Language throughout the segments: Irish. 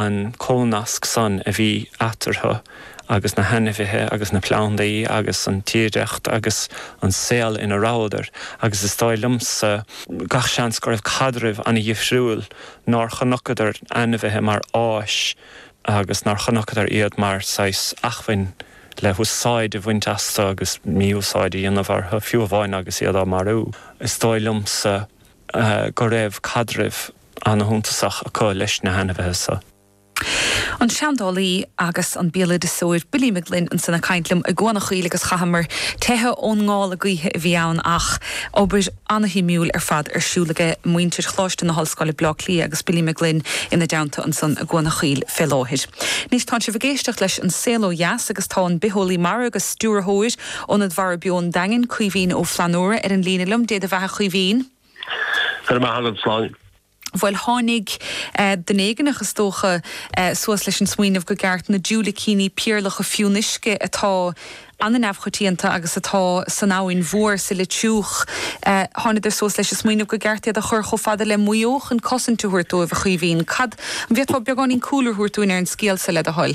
an cónasc san a bhí eatarthu agus na hainmhithe agus na plandaí agus an tírdhreacht agus an saol ina rabhadar agus is dóigh liomsa gach seans go raibh caidreamh ana-dhifriúil nár chonaiceadar ainmhithe mar áis agus nár chonaiceadar iad mar saghas acmhainn le húsáid a bhaint astu agus mí-úsáid a dhéanamh orthu fiú amháin agus iad á marú. Is dóigh liomsa go raibh caidreamh. ana-shuntasach acu leis na hainmhithe so. an seandálaí agus an béaloideasóir Billy Mag Fhloinn ansan ag caint liom i gCuan an Chaoil agus chaitheamar teitheadh ón ngála gaoithe a bhí ann ach obair ana-shuimiúil ar fad ar siúl aige muintir Choláiste na hOllscoile Bleá Cliath agus Billy Mag Fhloinn ina dteannta ansan i gCuan an Chaoil fé láthair. Anois tánn sibh ag éisteacht leis An Saol Ó Dheas agus tá an bitheolaí mara agus stiúrthóir Ionad Mhara Beo an Daingin, Caoimhín Ó Flannúra ar an líne liom. Dé do bheatha a Chaoimhín. Go raibh maith agat, a Shláine. Bhuel, tháinig, eh, duine éigneach, is dócha, eh, suas leis an smaoineamh gur cheart na diúilicíní péarlacha fionnuisce atá ana-neamhchoitianta agus atá san Abhainn Mhór, sa Leitriúch, eh, thánadar suas leis an smaoineamh gur cheart iad a chur chomh fada le Maigh Eo chun cosaint a thabhairt dóibh, a Chaoimhín. Cad, an bhféadfá beagáinín cúlra a thabhairt dúinn ar an scéal seo, le do thoil?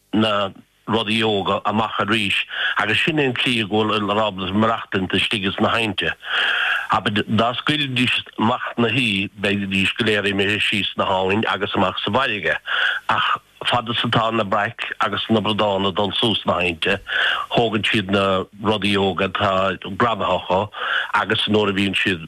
na rudaí óga amach arís agus sin é an tslí go bhfuil siad ábalta maireachtaint istigh ins na haibhnte. Abair, dá scaoilfidís amach na huibhe, bheidís go léir imithe síos an abhainn agus amach sa bhfairrge. Ach fad is atá na bric agus na bradáin ag dul suas na haibhnte, thógann siad na rudaí óga atá greamaithe acu agus nuair a bhíonn siad.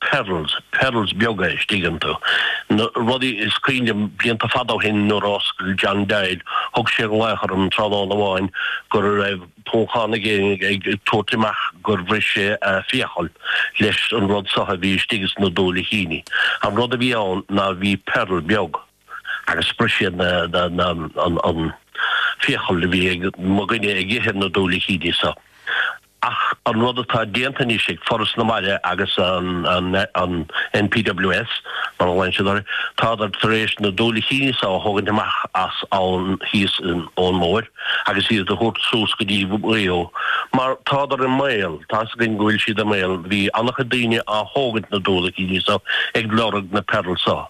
pearls, pearls beaga istigh iontu. Na rudaí is cuimhin liom, blianta fada ó shin nuair a oscail John Doyle, thug sé ar an láthair orm tráthnóna amháin go raibh poncán ag éinne ag tabhairt amach gur bhris sé a fiacail leis an rud so a bhí istigh sna diúilicíní. An rud a bhí ann ná bhí pearl beag. agus bhris sé an fhiacail a bhí ag mo dhuine ag ithe na diúilicíní so. Ach an rud atá déanta anois ag Foras na Mara agus an NPWS, mar a ghlaonn siad orthu, tádar tar éis na diúilicíní so a thógaint amach as abhainn thíos an Abhainn Mhór agus iad a thabhairt suas go dtí Maigh Eo mar tádar i mbaol, tá's againn go bhfuil siad i mbaol, bhí an-chuid daoine á thógaint na diúilicíní so ag lorg na pearl so.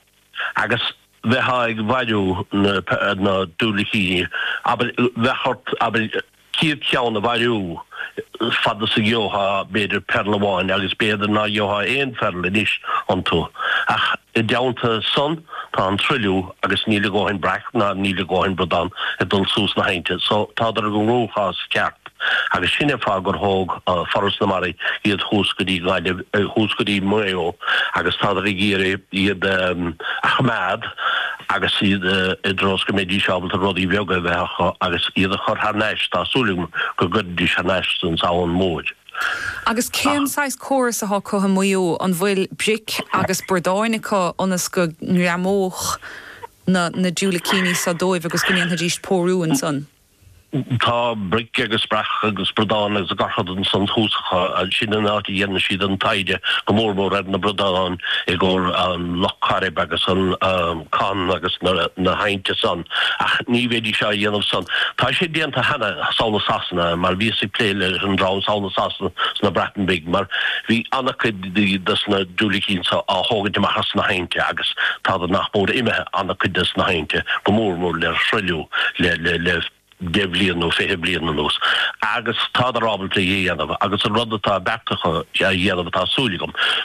agus bheifeá ag bailiú na diúilicíní, abair, bheadh ort, abair, cúig chéad ceann a bhailiú, fad is a gheofá, b'fhéidir, pearl amháin, agus b'fhéidir ná gheofá aon phearl anois iontu, ach i dteannta san, tá an truilliú, agus níl a dhóthain breac, ná níl a dhóthain bradán ag dul suas na haibhnte, so tádar i gcruachás ceart. Agus sin é fáth gur thóg Foras na Mara iad thuas go dtí Gaillimh, thuas go dtí Maigh Eo, agus tádar ag iarraidh iad a choimeád agus iad i dtreo is go mbeidís ábalta rudaí beaga a bheith acu agus iad a chur thar n-ais, tá súil agam go gcuirfidís thar n-ais san Abhainn Mhóir. Agus cén saghas córas atá acu i Maigh Eo, an bhfuil bric agus bradáin acu ionas go ngreamódh na diúilicíní seo dóibh agus go ndéanfaidís pórú ansan? Tá bric agus breac agus bradáin agus gach rud ansan thuas acu ansin, an áit a dhéanann siad an taighde, go mór mór ar na bradáin i gcomhair an Loch Coirib agus an Con agus na haibhnte san, ach ní bheidís á dhéanamh san. Tá sé déanta cheana, sall i Sasana, mar bhíos ag plé leis an dream sall i Sasana sna Breatain Bhig, mar bhí ana-chuid. dos na diúilicíní so á thógaint amach as na haibhnte agus tádar nach mór imithe ana-chuid des na haibhnte, go mór mór le truailliú le deich bhlian nó fiche blian anuas. Agus tádar ábalta é a dhéanamh agus an rud atá beartaithe a dhéanamh atá súil agam,